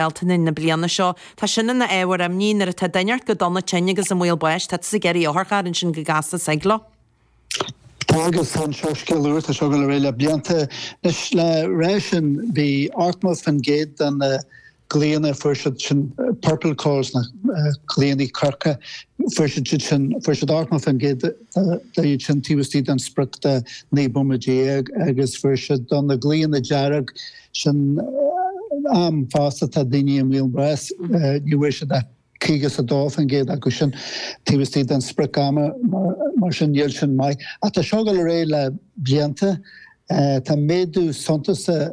Bealtaine na bliana seo. Tá sin ina ábhar imní, nuair atá duine ort go dona tinn agus i mbaol báis, tá tusa ag iarraidh otharcharr, ansin go gasta suigh leo. Agus chan seo scéal úr, tá sé ag gabháil ar aghaidh le blianta. Anois, le rá sin, bhí 80% de na glaonna, fuair siad sin purple calls, na glaonna corcra, fuair siad iad sin, fuair siad 80% de iad sin taobh istigh den sprioc de 19 mbomaite agus fuair siad do na glaonna dearg, Sin am fosta atá daoine i mbaol báis, ní bhfuair siad ach 52% acu sin, taobh istigh den sprioc ama, mar sin níl sin maith. Ach tá seo ag gabháil ar aghaidh le blianta. Tá méadú suntasach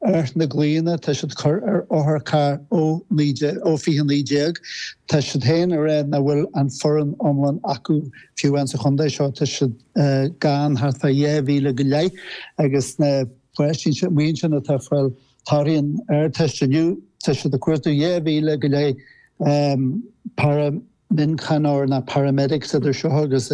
ar na glaonna atá siad ag cur ar otharcharr ó 2019. Tá siad féin ag rá nach bhfuil an foireann iomlán acu fiú ann sa chontae seo. Tá siad gann thart fá 2,000 go leith agus na. Páistí amuigh ansin atá ag fáil torthaí na hArdteiste inniu, tá siad ag cuartú dhá mhíle go leith paraimhíochaineoir ná paramedics idir seo agus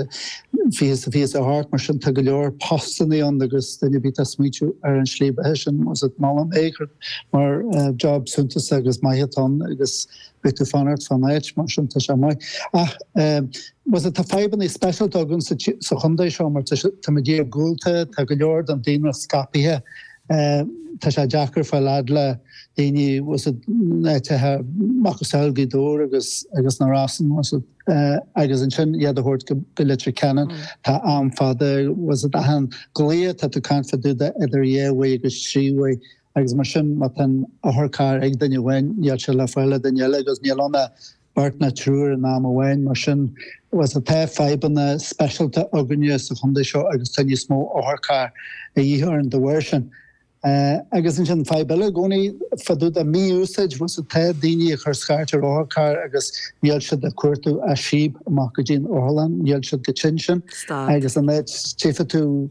fiche fiche a seacht, mar sin tá go leor postannaí ann agus duine ar bith atá ag smaointiú ar an tslí beatha sin, mholfainn é mar job suntasach agus maith atá ann agus. Beidh tú ag fanacht fán áit, mar sin tá sé maith. Ach tá a fhios agat, tá fadhbanna speisialta againn sa chontae seo mar táimid iargúlta, tá go leor den daonra scaipthe, tá sé deacair fáil fhad le daoine in áiteacha macasamhail Gaoth Dobhair agus na Rosann agus ansin iad a thabhairt go Leitir Ceanainn. Tá am fada, achan ghlao atá tú ag caint fá dtaobh de idir dhá uair agus trí uair, agus mar sin, má tá an t-otharcharr ag duine amháin, níl sé le fáil ag duine eile, agus níl ann ach beirt ná triúr in am amháin. Mar sin, tá fadhbanna speisialta againne sa chontae seo agus tá níos mó otharcharr a dhíth orainn dá bharr sin. Agus ansin, fadhb eile i gcónaí, fá dtaobh de mí-úsáid, tá daoine ag cur scairt ar otharcharr agus níl siad ach ag cuartú síob amach go dtí an otharlann, níl siad chomh tinn sin. Tá a fhios agat. Agus an fhaid a tchífidh tú.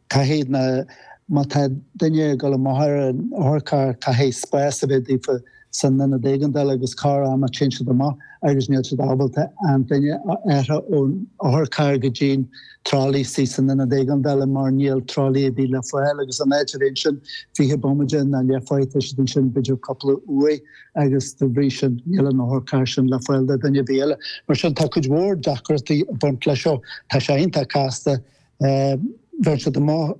Caithfidh na, má tá duine ag dul amach ar an otharcharr, caithfidh spás a bheith daofa san ionad éigeandála agus corr-am téann siad amach agus níl siad ábalta an duine a athrú ón otharcharr go dtí an tralaí istigh san ionad éigeandála mar níl tralaí ar bith le fáil agus in áit a bheith ansin fiche bomaide ná leathuair tá siad ansin b'fhéidir cúpla uair agus de bhrí sin níl an otharcharr sin le fáil do dhuine ar bith eile. Mar sin tá cuid mhór deacrachtaí ag baint leis seo. Tá sé iontach casta Bheireann siad amach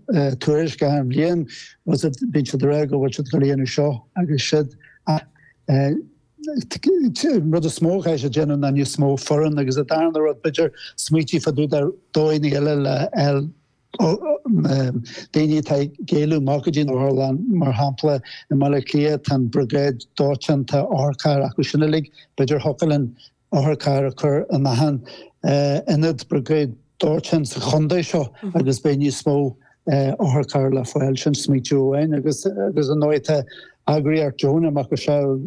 tuairisc achan bhliain agus bíonn siad ag rá go bhfuil siad ag gabháil a dhéanamh seo agus siúd ach an rud is mó a chaithfeas a dhéanamh ná níos mó foireann agus an darna rud b'fhéidir smaoitiú fá dtaobh de dóigheanna eile le daoine atá ag éileamh amach go dtí an otharlann mar shampla i mBaile Átha Cliath tá an briogáid dóiteáin tá otharcharr acu sin uilig b'fhéidir thiocfadh linn otharcharr a chur in achan ionad briogáid dóiteáin sa chontae seo agus beidh níos mó otharcharr le fáil, sin smaoitiú amháin agus agus ar ndóigh tá eagraíocht deonach macasamhail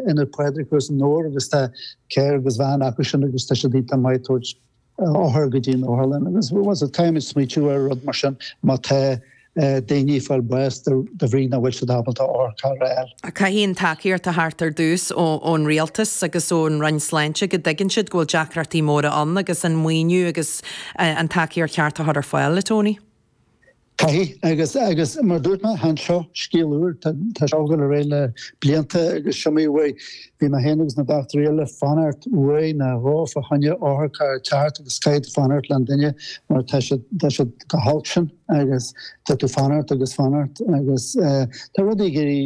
Ionad Pádraig thuas i nDobhar agus tá carr agus veain acu sin agus tá siad iontach maith ag tabhairt othair go dtí an otharlann agus an t-am smaoitiú ar rud mar sin má tá daoine ag fáil báis de bhrí nach bhfuil siad ábalta otharcharr a fháil. Caithfidh an tacaíocht a thabhairt ar dtús ón Rialtas agus ón Roinn Sláinte go dtuigeann siad go bhfuil deacrachtaí móra ann agus an maoiniú agus an tacaíocht cheart a chur ar fáil, a Tony. Caithfidh, agus agus mar dúirt mé, chan seo scéal úr, tá tá seo ag gabháil ar aghaidh le blianta agus is iomaí uair a bhí mé féin agus na dochtúirí eile ag fanacht uair nó dhó fá choinne otharcharr a theacht agus caithfidh tú fanacht leis an duine mar tá siad tá siad chomh holc sin agus tá tú ag fanacht agus ag fanacht agus tá rudaí ag éirí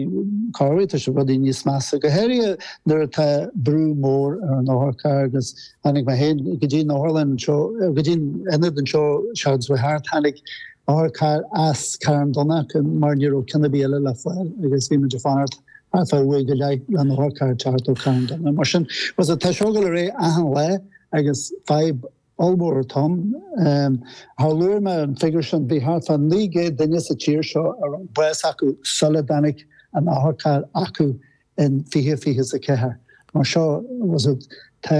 corruair tá sé rudaí níos measa go háirithe nuair atá brú mór ar an otharcharr agus Tháinig mé féin go dtí'n otharlann anseo, go dtí'n ionad anseo seachtain seo chuaigh thart. Tháinig otharcharr as Carn Domhnach mar ní raibh ceann ar bith eile le fáil agus bhí muid ag fanacht ar feadh uair go leith leis an otharcharr teacht ó Carn Domhnach. Mar sin, tá sé tá seo ag gabháil ar aghaidh achan lá agus fadhb ollmhór atá ann. Mar luaigh mé an figiúr sin, bhí thart fá 900 duine sa tír seo a fuair bás sula dtáinig an otharcharr acu in 2024. Mar sin, tá